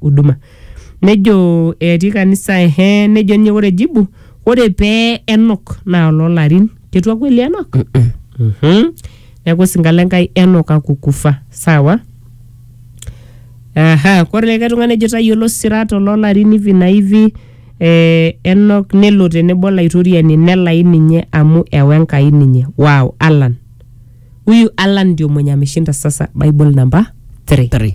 huduma nejo etii kanisa ehe nejo ninye ore jibu ore pee enok naa ololarin ketua kweli enok Mhm. neeku osinka lenkai enok akukufa sawa Aha, kore likae tung'ani ejo tayiolo sirat ololarin hivi na hivi eh, enok nelo tenebo olaitoriani nelai ninye amu ewa Enkai ninye wow Alan huyu Alan ndio mwenye ameshinda sasa Bible number 3 Three.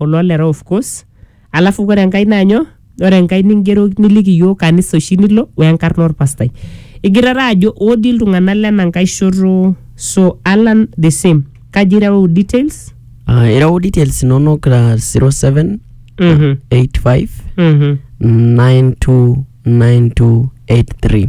oloo lera of course alafu kore enkae naa nyoo ore enkae ningero niliki iyiok kanisa oshi nilo wenkarna orpastai igirara ajo odi iltung'anak lena nkae shoto so alan the same kaji ireu details Ah, ireu details inonok ah, 07 Mhm. 85 Mhm. 929283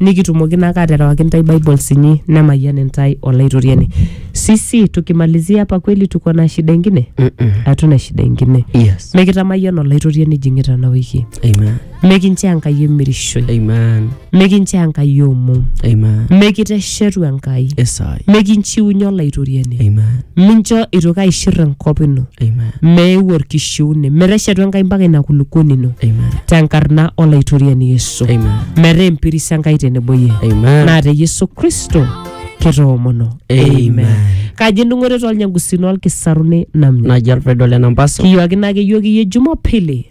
nikitumoki naake aterewaki intae bibles inyi nemayian intae olaitoriani sisi tukimalizia hapa kweli tuko na shida ingine Mm-mm. hatuna shida ingine Yes. mikitamayian olaitoriani ijing'ita ena wiki Amen. mikinchoo enkai emirishoi Amen. mikinchoo enkai omom Amen. mikite shetu Enkai. Esai. Mikinchiunye Olaitoriani. Amen. Mincho eitoki aishir enkop ino. Amen. Meeu olkishiune. Meteshetu Enkai mpaka ina kulukuoni ino. Amen. Tenkarna Olaitoriani Yesu. Amen. Metaa empiris Enkai tenebo iyie. Amen. Naa te Yesu Kristo kitoomono. Amen. Kaji endung'oto tolnyangusino olkisaruni namnyo. Naji olpedo le Nambaso. Kiyuakina ake yioki iyie Jumapili.